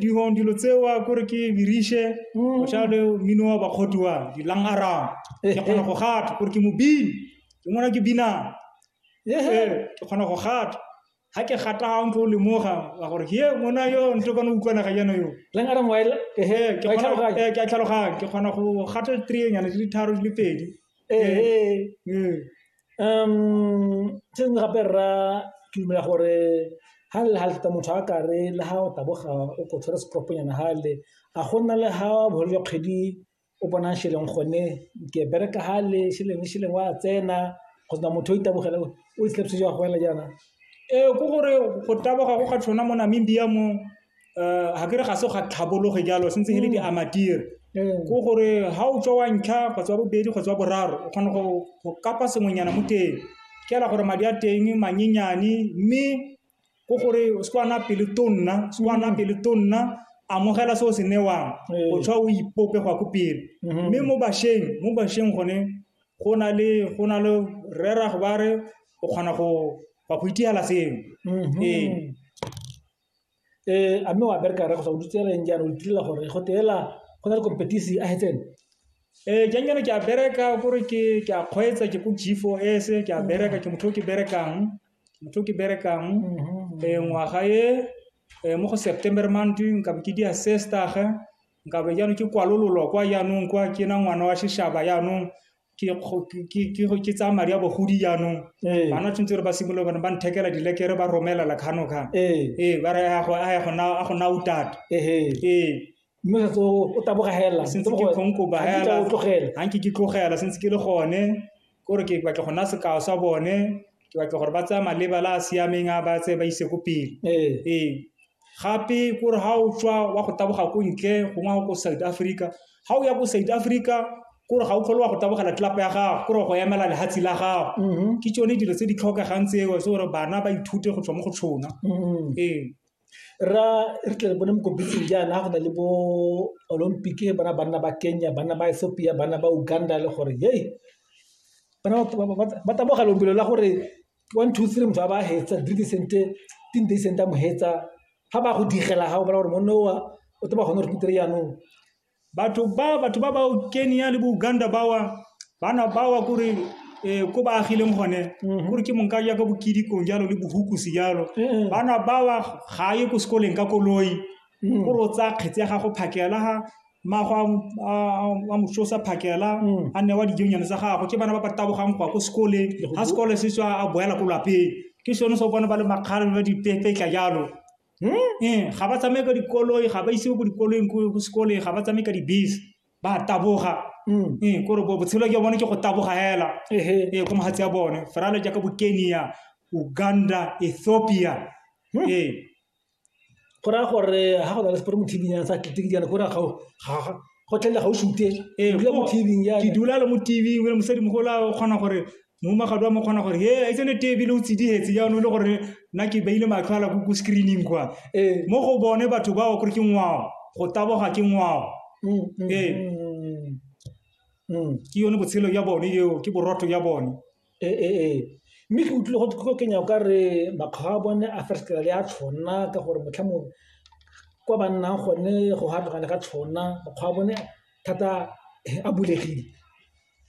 Dingwe dilo tseo kore ke birishe go tshwana le mmino wa bakgoti wa dilang arang ke kgona go gata kore ke mobini ke ngwana ke binang ee ke kgona go gata ga ke gata ga ntlo o lemoga wa gore he mona yo nto kone utlwana ga jana yo ke a tlhaloganya ke kgona go gata three nyana di le tharo di le pedi ee Se nngwe gape rra ke dumela gore ha le ha lata motho a kare le ha o taboga o ko tshwere setropo nyana ha le a go nna le ha bofelo jwa kgwedi o bonang šeleng gone ke bereka ha le šeleng šeleng wa tsena go sena motho o itemogela o itlhapise jwa go fela jaana. Ee, ke gore go taboga go ga tshwana mo Namibia mo. um ga ke re ga se ga tlhabologe jalo se ntse e le di amatire ko gore ga o tswa wa ntlha kgotsa bobedi kgotsa boraro o kgona go kapa sengwenyana mo teng ke ela gore madi a teng manyenyane mme ko gore o se kwana pele tonna se kwana mm. pele tonna amogela se o se newang o tshwa o ipope go ya ko pele mm-hmm. mme mo bašweng mo bašweng gone go na le go na le rera go ba re o kgona go ba go itigela sengwe mm-hmm. ee a mme wa bereka rre kgotsa o dutse reng jaana o itirela gore go teela go na le competition a hetsene ee jang jaana ke a bereka kore ke a kgweetsa ke ko g four s ke a bereka ke motho o ke berekang motho o ke berekang ee ngwaga e um mo go september month nkabe ke dia sestage nkabe jaanong ke kwalololwa kwa jaanong kwa ke na ngwana wa sheshaba jaanong ke tsaya madi a bogodi jaanong bana tshwanetse re ba simolola bone ba nthekela dilekere ba romela la kgano kgang ee ba re a go na o tata ee mme setse o taboga helela sentse ke kgonko ba helela ga nke ke tlogela sentse ke le gone kore ke batla go nna sekao sa bone Ke batla gore ba tsaya maleba la a siameng a ba tse ba ise ko pele. Ee. Gape kore ha o tswa wa go taboga ko ntle gongwe ga ko South Africa, ga o ya ko South Africa kore ga o tlhole wa go tabogela tlelapa ya gago, kore go emela lehatshe la gago. Ke tsone dilo tse di tlhokegang tseo gore bana ba ithute go tswa mo go tsona. Ee. Rra re tle re bone mo kopitleng jaana go na le bo olympic ba na banna ba Kenya banna ba Ethiopia banna ba Uganda le gore hei ba taboga lobelo la gore one two three motho a ba hetsa three di sente tin di sente a mo hetsa ga ba go digela ga o bona gore monna o o tlo ba gone gore jaanong. batho ba batho ba ba kenya le bouganda bawa bana bawa kore eh, ko ba agileng gone Mhm. kore ke monka jaaka bokidikong jalo le bohukusi jalo Mhm. bana bawa ga ye ko sekoleng ka koloi Mhm. kore o tsaya kgetse ya gago phakela ga mago a mososa phakela Mhm. a newa dijonyane tsa gago ke bana ba ba tabogang go ya ko sekoleng ga sekole se tswa a boela ko lapeng ke sone se o bona ba le makgare ba dipepetla jalo ee ga ba tsamaye ka dikoloi ga ba isiwe ko dikoloi ko sekoleng ga ba tsamaye ka dibese ba taboga mm. ee kore botshelo ke bone ke go taboga hela ee ko magatsi a bone ferale jaaka bo kenya uganda ethiopia hmm. ee go raya gore ga go na le sepore mo tv ya sa tlete ke jana gore go tlela ga o sute ke dula le mo tv o le mosadi mogola o kgona gore Mohumagatho wa mo kgona gore he e tsene tee ebile o tsidihetse jaanong e le gore nna ke beile matlho ala ko screening kwa ee mo go bone batho bao kore ke ngwao go taboga ke ngwao ee ke yone botshelo ya bone eo ke borotho ya bone ee mme ke utlwile go tlo kenya o ka re makgwa a bone a fesekela le a tshwana ka gore motlha mongwe kwa ba nnang gone go gatlogane ga tshwana makgwa a bone thata a bulegile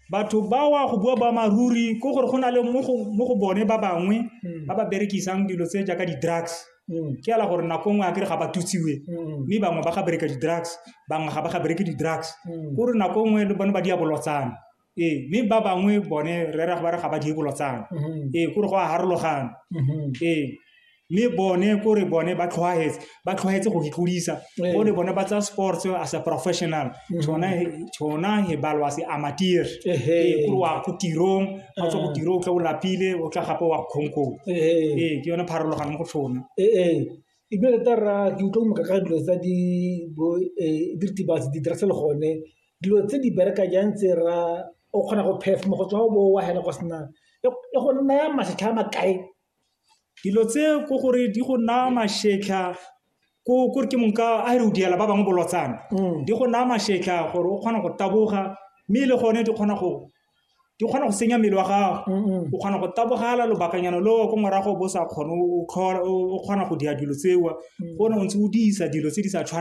Batho bawa go bua boammaaruri ke gore go na le mo go bone ba bangwe mm. ba ba berekisang dilo tse jaaka di-drugs mm. ke ala gore nako nngwe a kere ga ba tutsiwe mm. mme bangwe ba ga bereka di-drugs bangwe ga ba ga bereke di-drugs gore nako nngwe le bone ba di a bolotsana ee mme ba bangwe bone re raya ba re ga ba di bolotsana mm-hmm. ee kore go a harologana mm-hmm. ee mme bone kore bone ba tlhwaetse ba tlhwaetse go itlodisa ee. bone bone ba tsa sports as a professional tshona mhm. tshona he balwa se amateur ee kore wa go tirong ga tswa go ah. tiro o tla o lapile o tla gape wa kgonkong ee ke yone pharologano go tshona ee ebile tota rra ke utlwa moka ka dilo tsa di bo e, diritibatsi di dirase le gone dilo tse di bereka jang tse ra o kgona go phef mo go tswa o bo wa hela go sena e go nna ya masetlha makae Dilo tse ko gore di go naya mašetlha ko kore ke monka a re o diela ba bangwe bolotsana mm. di go naya mašetlha gore o kgona go taboga mme e le gone di kgona go di kgona go senya mmele wa gago o kgona go tabogala lobakanyana leo ko morago bo sa kgone o kgona go dira dilo tseo mm. o ne o ntse o disa dilo tse di sa tshwaneng